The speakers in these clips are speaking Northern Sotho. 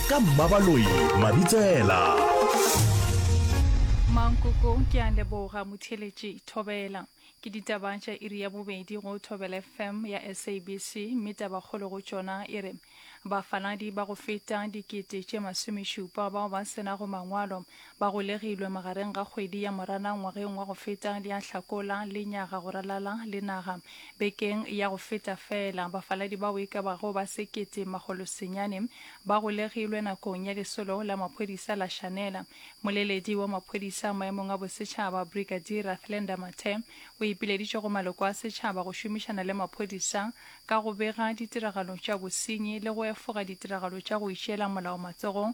ka mmabaloi mabitsela mankoko ke a leboga motheletši thobela ke ditaba tša iri ya bobedi go thobela fm ya sabc mme tabakgolo go tšona e re bafaladi ba go feta dikete tše masomešupa bao ba senago mangwalo Ba golegilwe magareng ga kgwedi ya Moranang ngwageng wa go feta le ya Hlakola, lenyaga go ralala le naga. Bekeng ya go feta feela, bafaladi bao e ka bago ba sekete makgolo senyane ba golegilwe nakong ya lesolo la maphodisa la Shanela. Moleledi wa maphodisa maemong a bosetšhaba, Brigadier Rathlenda Mathe, o ipileditše go maloko a setšhaba go šomišana le maphodisa ka go bega ditiragalo tša bosenyi le go efoga ditiragalo tša go itšeela molao matsogong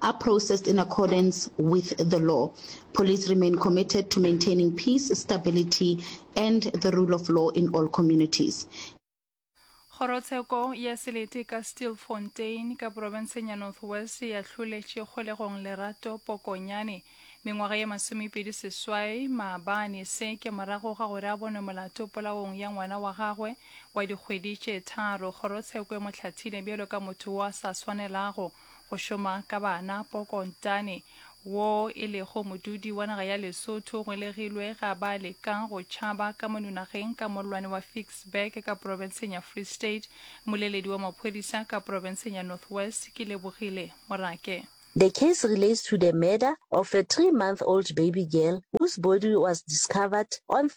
are processed in accordance with the law. Police remain committed to maintaining peace, stability, and the rule of law in all communities. kgorotsheko ya selete ka steelfontein ka porofenseng ya north west ya hloletše kgolegong lerato pokonyane mengwaga ye masomepedi seswai maabane se ke morago ga gore a bonwe molato polaong ya ngwana wa gagwe wa dikgwedi tše tharo kgorotsheko e mo hlathile bjalo ka motho wo a sa swanelago go šoma ka bana Poko Ntane, wo e lego modudi wa naga ya Lesotho o ngwelegilwe ga ba leka go tšhaba ka monunageng ka mollwane wa Ficksburg ka profenseng ya Free State. Moleledi wa maphodisa ka profenseng ya North West ke Lebogile Morake. The case relates to the murder of a three-month-old baby girl whose body was discovered on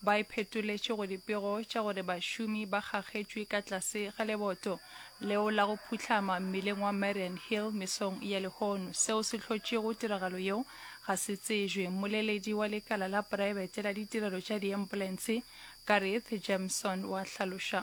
Ba iphetoletše go dipego tša gore bašomi ba kgakgetšwe ka tlase ga leboto leo la go phuhlama mmileng wa Marian Hill mesong ya lehono. Seo se hlotšego tiragalo yeo ga se tsejwe. Mmoleledi wa lekala la praebete la ditirelo tša diempulense, Gareth Jemson wa hlaloša.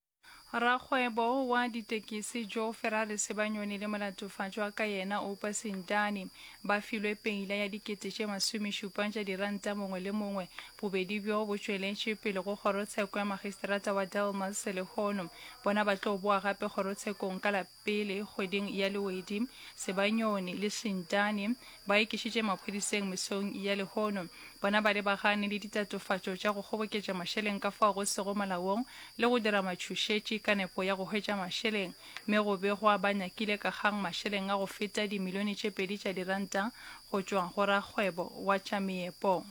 Rakgwebo wa ditekisi Joe Ferrari Sebanyoni le molatofatšwa ka yena Oupa Sintani ba filwe peila ya dikete tše masomešupa tša diranta mongwe le mongwe. Bobedi bjo bo tšweletše pele go kgorotsheko ya magistrata wa Delmas lehono bona ba tlo boa gape kgorotshekong ka la Pele, kgweding ya Lewedi, Sebanyoni le Shintani ba ikišitše maphodiseng mesong ya lehono. Bona ba lebagane le ditatofatšo tša go kgoboketša mašeleng ka fao go sego molaong le go dira matšhošetši ka nepo ya go hwetša mašeleng, mme go begwa ba nyakile ka kgang mašeleng a go feta dimilione tše pedi tša diranta go tšwa go rakgwebo wa tša meepo.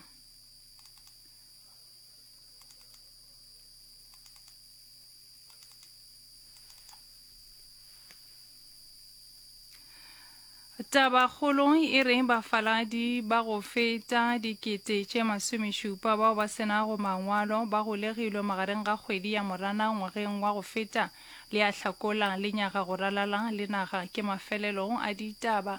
Tabakgolo e re bafaladi ba go feta dikete tše masomešupa bao ba senago mangwalo ba golegilwe magareng ga kgwedi ya morana ngwageng wa go feta le ya hlakola le nyaga go ralala le naga ke mafelelo a ditaba